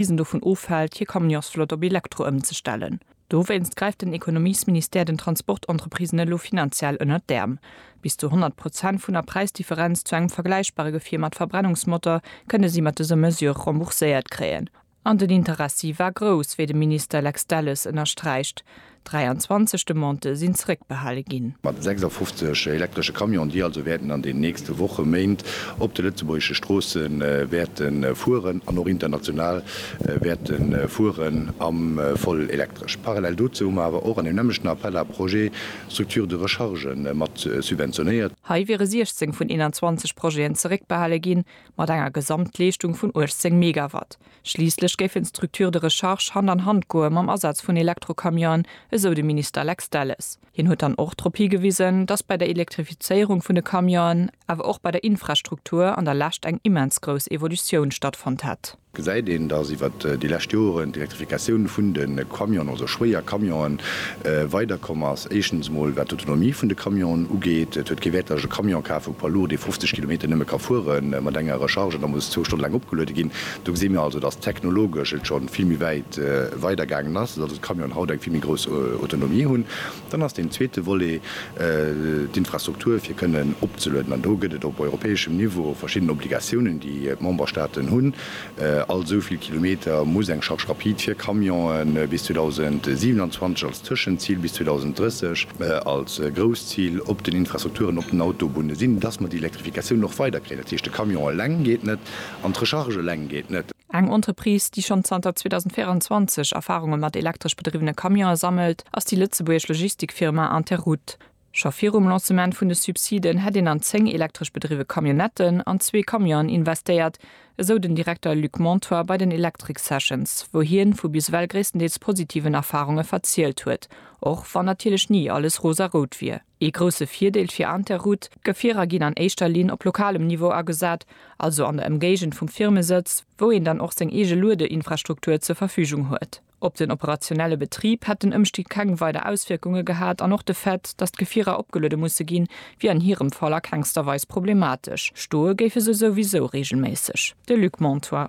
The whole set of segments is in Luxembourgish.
bis en dovun ofhält, hir Camionsflott op Elektro ëmzestellen. Dowéinst gräift den Ekonomiesministère den Transportentreprisen elo finanziell ënnert d'Äerm. Bis zu 100 Prozent vun der Präisdifferenz zu engem vergläichbare Gefier mat Verbrennungsmotor kënne si mat dëser Mesure rembourséiert kréien. An den Interessi war grouss, wéi de Minister Lex Delles ënnersträicht. 23 Demandë sinn zréckbehale ginn. Mat 56 elektresche Camionen, déi also wäerten an den nächste Woche, Méint op de lëtzebuergesche Stroosse wäerte fueren an och international wäerte fueren, am voll elektresch. Parallel dozou hu mer awer och an deem nämmlechten Appel à projets Structures de recharge mat subventionéiert. Hei wiere 16 vun 21 Projeten zeréckbehale ginn, mat enger Gesamtleeschtung vun 18 Megawatt. Schliisslech géifen d'Structures de recharge Hand an Hand goe mam Asaz vun Elektrocamionen, esou de Minister Lex Delles. Hien huet dann och drop higewisen, datt bei der Elektrifizéierung vun de Camionen, awer och bei der Infrastruktur an der Lescht eng immens grouss Evolutioun stattfonnt hätt. Gesäit een, datt iwwer déi lescht Joren d'Elektrifikatioun vun de Camionen, also schwéier Camionen, weider komm ass. Éischtens emol wat d'Autonomie vun de Camionen ugeet. Et huet kee Wäert, datt ech e Camion kafen, e Poids lourd, dee 50 Kilometer nëmme ka fuere mat enger Recharge, da muss zwou Stonne laang opgeluede ginn. Do gesi mir also, dass technologesch et scho vill méi wäit weidergaangen ass, dass also d'Camionen haut eng vill méi grouss Autonomie hunn. Dann ass deen zweete Volet d'Infrastruktur, fir kënnen opzelueden. An do gëtt et op europäeschem Niveau verschidden Obligatiounen, déi d'Memberstaaten hunn. All esou vill Kilometer muss eng Charge rapide fir Camionen bis 2027 als Tëschenzil, bis 2030 als grousst Zil op den Infrastrukturen, op den Autobunne sinn, dass mer déi Elektrifikatioun och weiderkréien. Dat heescht, de Camion eleng geet net. An d'Recharge eleng geet net. Eng Entreprise, déi schonn zanter 2024 Erfarunge mat elektresch bedriwwene Camionen sammelt, ass déi lëtzebuergesch Logistikfirma Interroute. Scho virum Lancement vun de Subsiden hätt een an zéng elektresch bedriwwe Camionnetten an zwee Camionen investéiert, esou den Direkter Luc Montoy bei den Electric Sessions, wou hien vu bis ewell gréisstendeels positiven Erfarunge verzielt huet, och wann natierlech ni alles rosarout wier. Ee grousse Virdeel fir Interroute, D'Gefierer ginn an éischter Linn op lokalem Niveau agesat, also an der Ëmgéigend vum Firmesëtz, wou een dann och seng eege Luedeinfrastruktur zur Verfügung huet. Op den operationelle Betrib hätt den Ëmstieg keng weider Auswierkunge gehat an och de Fait, datt d'Gefierer opgeluede musse ginn, wier an hirem Fall a kengster Weis problematesch. Stoe géife se souwisou reegelméisseg. De Luc Montoy.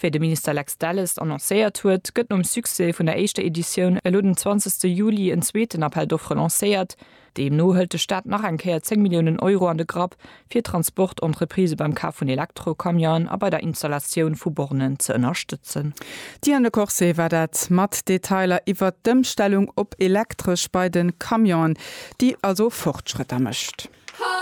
Wéi de Minister Lex Delles annoncéiert huet, gëtt nom Succès vun der éischter Editioun elo den 20 Juli en zweeten Appel d'offres lancéiert. Deemno hëlt de Staat nach eng Kéier 10 Milliounen Euro an de Grapp, fir d'Transport-Entreprisë beim Kaf vun Elektro-Camionen a bei der Installatioun vu Bornen ze ënnerstëtzen. D'Diane Le Corset war dat mat Detailer iwwert d'Ëmstellung op Elektresch bei de Camionen, déi also Fortschrëtter mécht.